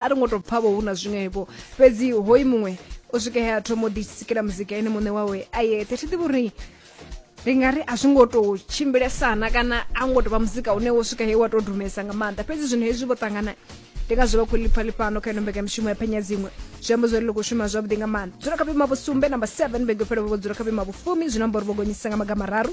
a ri ngo tou pfa vho hu na zwiṅwevho fhedzi hoyu muṅwe o swika he a thoma u ḓisikela muzika ene muṋe wawe a yeṱhe thi ḓivhi uri ndi nga ri a zwi ngo tou tshimbilesana kana a ngo tou vha muzika une wo swika he wa tou dumesa nga maanḓa fhedzi zwino hezwi vho ṱangana ndi nga zwi vha khou lipfa lifhano kha ino mbekamishumo ya phenya dziṅwe zwi amba zwori ḽi khou shuma zwavhuḓi nga maanḓa dzula kha vhuima vhusumbe namba 7 vhege fhelo vho dzula kha vhuima vhufumi zwi no amba uri vho gonyisa nga magama raru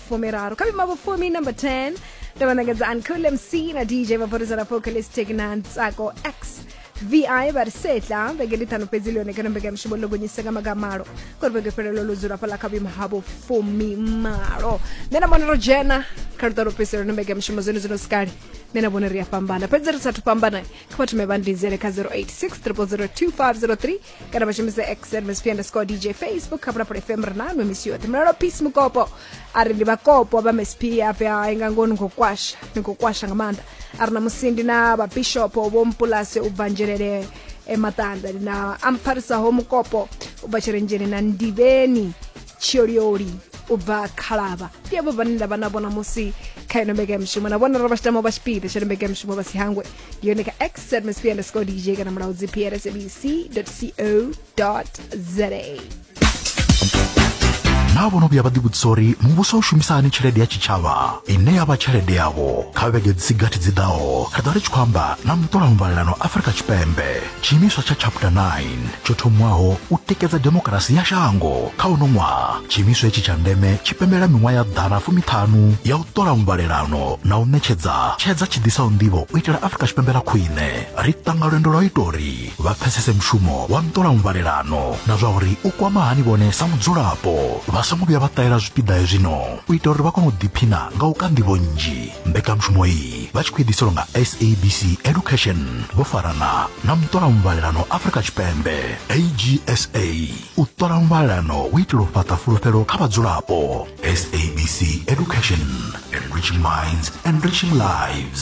fumiraru kha vhima vhufumi number 10 ndo vha ṋekedza uncool mc na dj vha vorisa na focalistic na ntsako x vi vha ri setla vhege ndi ṱhanu fhedzi lone kana mbekanyamushumo ḽo gonyise nga maga malo kori vhege fhelelo ḽo dzula fhaḽa kha vhuimo ha vhufumi malo nṋe na vhona ro dzhena kha luṱa lwo fhedzisela no mbekanyamushumo zwone zwino sikali nṋe na vhona ri a fhambana fhedzi ri sathu fhambana kha vhathu me vha ndinzele kha 086 000 2503 kana vha shumise x msp underscore dj facebook hafuna pole fm ri nanwe misi yoṱhe mulalo peace mukopo a ri ndi vhakopo vha msp afe hai nga ngoho ni khou kwasha ni khou kwasha nga maanḓa a ri na musindi na vhabishopo vho mpulase u bva nzhelele emaṱanda na ampharisaho mukopo u bva tshirenzheni na ndivheni tshiolioli u bva khalaba ndi avho vhane nda vha na vhona musi kha ino mbekamishumo na vhona ro vha tshi tama vha tshipiḓa tsha ino mbekamishumo vha si hangwe ndi yone kha x msp underscore dj kana mulawu gpr sabc co za naa vho no vhuya vha ḓivhudzisa uri muvhuso u shumisa hani tshelede ya tshitshavha ine ya vha tshelede yavho kha vhege dzi si gathi dzi ḓaho ri ḓo ri tshi khou amba na muṱola muvhalelano afrika tshipembe tshiimiswa tsha chapter 9 tsho thomiwaho u tikedza demokarasi ya shango kha uno ṅwaha tshiimiswa hetshi tsha ndeme tshi pembela miṅwaha ya ḓana fumiṱhanu ya u ṱola muvhalelano na u ṋetshedza tshedza tshi ḓisaho nḓivho u itela afurika tshipembe ḽa khwine ri ṱanga lwendo lwa u ita uri vha pfesese mushumo wa nṱola muvhalelano na zwa uri u kwama hani vhone sa mudzulapo vha songo vhuya vha ṱahela zwipiḓa hezwino u ita uri vha kone u ḓiphina nga u ka nḓivho nnzhi mbekanyamushumo iyi vha tshi khou eḓiselwa nga sabc education vho farana na muṱola muvhalelano afrika tshipembe agsa u ṱola muvhalelano u itela u fhaṱa fulufhelo kha vhadzulapo sabc education enriching minds enriching lives